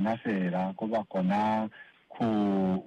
na feela ko ba kona ku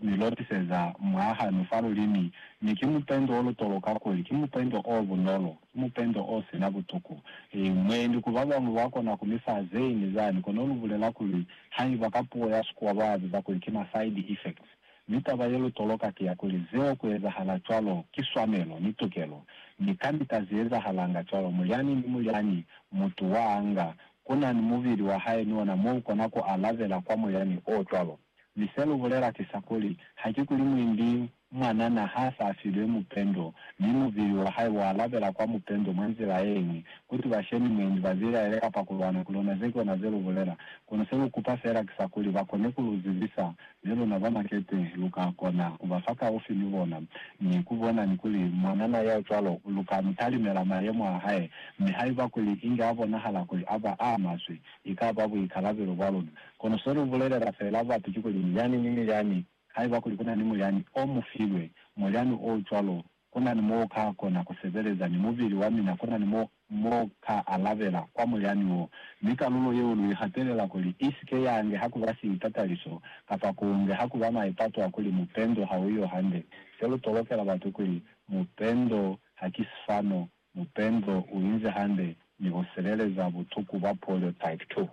mi lotiseza mwahanu fa lulimi. Mi ki mupendo o lutolo kakuli ki mupendo o bunolo, ki mupendo o si na butuku. Eyi, mwendi ku ba bañwi ba kona ku mi fa zeñwi zani, kono lu bulela kuli, haiba ka puo ya Sekua ba biza kuli ki ma side effects. Mi taba ye lutolo ka ki ya kuli, zeo ku ezahala cwalo ki swanelo ni tukelo. Mi kamita ze ezahalanga cwalo, mulyani ni mulyani mutu wa anga ku na ni mubili wa hae ni ona mo u kona ku alabela kwa moyani o cwalo. Mi se lu bulela ki sa kuli, haki kuli mwendi mwanana ha sa filwe mupendo, mi mubili wa hae wa alabela kwa mupendo mwa nzila ye ñwi, kuti ba she ni mwendi, ba bilaele kapa ku lwana ku lona. Ze ki ona ze lu bulela, kono se lu kupa fela ki sa kuli ba kone ku lu zibisa Mi luna ba makete lu ka kona ku ba fa kaufi ni bona, mi ku bona ni kuli mwanana ya cwalo lu ka mu talimela mayemo a hae. Mi haiba kuli inge a bonahala kuli a ba a maswe, i ka ba buikalabelo bwa luna. Kono se lu bulelela feela batu ki kuli, Mulyani ni mulyani, haiba kuli ku na ni mulyani o mu filwe, mulyani o cwalo Ku na ni mo u ka kona ku sebeleza ni mubili wa mina, ku na ni mo mu ka alabela kwa mulyani wo, mi kalulo yeo lu i hatelela kuli i si ke ya nge ha ku ba siitataliso, kapa ku nge ha ku ba maipato a kuli mupendo ha u yo hande. Se lu tolokela batu kuli, Mupendo ha ki sifano, mupendo u inzi hande ni ku sebeleza butuku bwa polio type 2.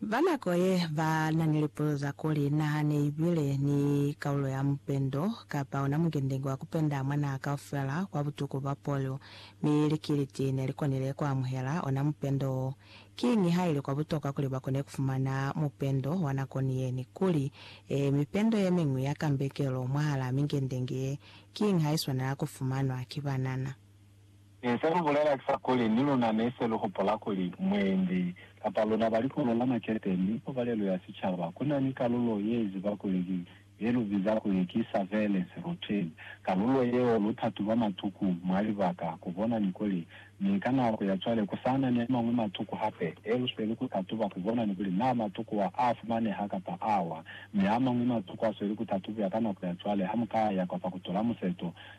Ba nako ye ba na ni lipuzo za kuli na ne i bile ni kaulo ya mupendo kapa ona mukendenke wa ku penda mwa naha kaufela kwa butuku bwa polio, mi likiliti ne li konile ku amuhela ona mupendo wo. Kiñi ha ili kwa butokwa kuli ba kone ku fumana mupendo wa nako ni ye ni kuli, ee, mipendo ye miñwi ya kambekelo mwahalaa mikendenke ye kiñi ha i swanela ku fumanwa ki banana? Ee, se lu bulela ki sa kuli, ni luna ne se lu hupula kuli mwendi kapa luna ba likolo la makete ni kobalelo ya sicaba ku na ni kalulo ye ziba kuli ki ye lu biza kuli ki surveillance routine. Kalulo yeo lu ta tuba matuku mwa libaka ku bona ni kuli mi ka nako ya cwale ku sa na ni a mañwi matuku hape e lu sweli ku tatuba ku bona ni kuli na matuku wa a fumaneha kapa awa. Mi a mañwi matuku a sweli ku tatubiwa ka nako ya cwale ha mu ka ya kwa Fakutola Museto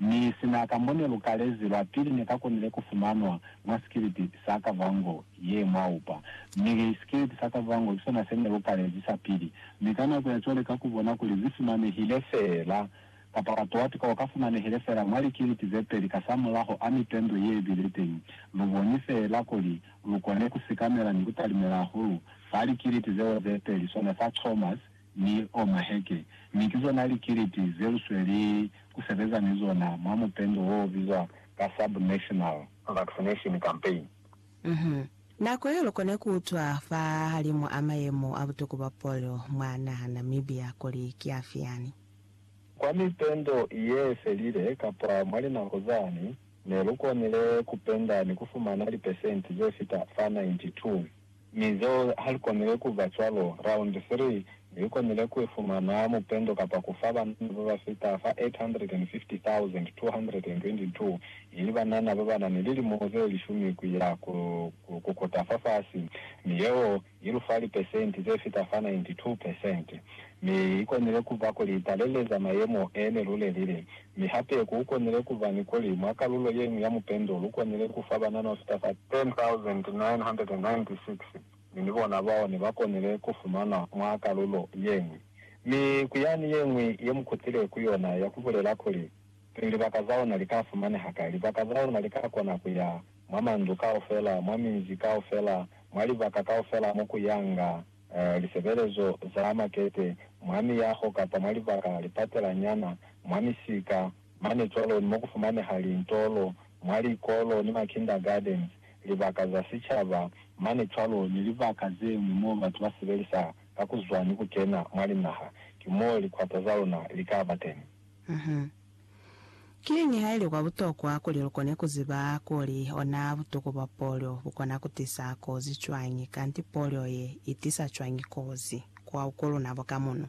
Mi sina ka mo ne lu kalezi lwa pili ne ka konile ku fumanwa mwa sikilipi sa Kavango ye mwa upa. Mi sikilipi sa Kavango ki sona se ne lu kalezi sa pili. Mi ka nako ya cwale ka ku bona kuli zi fumanehile fela, kapa wa towa pika o ka fumanehile fela mwa likilipi ze peli ka sa mulaho a mipendwe ye bile teñi, lu boni fela kuli lu kone ku sikamela ni ku talimela hahulu fa likilipi zeo ze peli, sona sa Chalmers, ni o maheke, mi ki zona likiliti ze lu sweli ku sebeza ni zona mwa mupendo wo bizwa ka Sub-National. Vaccination Campaign. Uhum. Nako yeo lu kone ku utwa fahalimu a mayemo a butuku bwa polio mwa naha Namibia kuli ki afi yani. Kwa mipendo ye felile kapa mwa linako zani, ne lu konile ku penda ni ku fumana lipesenti ze fita fa 92. Mi zo ha li konile ku ba cwalo. Raundi 3 li konile ku ifumana mupendo kapa ku fa banana ba ba fita fa 850,222, ili banana ba ba na ni lilimo ze lishumi ku ya ku kota fa fasi, mi yeo i lu fa lipesenti ze fita fa 92 pesenti. Mi i konile ku ba kuli i taleleza mayemo e ne lu lelile. Mi hape ku konile ku ba ni kuli mwa kalulo ye ñwi ya mupendo lu konile ku fa banana ho fita fa 10,996, mi ni bona bao ne ba konile ku fumanwa mwa kalulo ye ñwi. Mi ku yani ye ñwi ye mu kutile ku yona ya ku bulela kuli, Pili libaka za luna li ka fumaneha kai? Libaka za luna li ka kona ku ya mwa mandu kaufela, mwa minzi kaufela, mwa libaka kaufela mo ku yanga. lisebelezo za makete, mwa miyaho kapa mwa libaka lipatelanyana, mwa misika, mane cwalo ni mo ku fumaneha lintolo, mwa likolo ni ma kindergardens, libaka za sicaba, mane cwalo ni libaka ze ñwi mo batu ba sebelisa ka ku zwa ni ku kena mwa linaha, ki mo likwata za luna li ka ba teni. Kiñi haili kwa butokwa kuli lukone kuziba kuli ona butuku bwa polio bukona kutisa kozi cwañi, kanti polio ye itisa cwañi kozi kwa uko luna boka muno?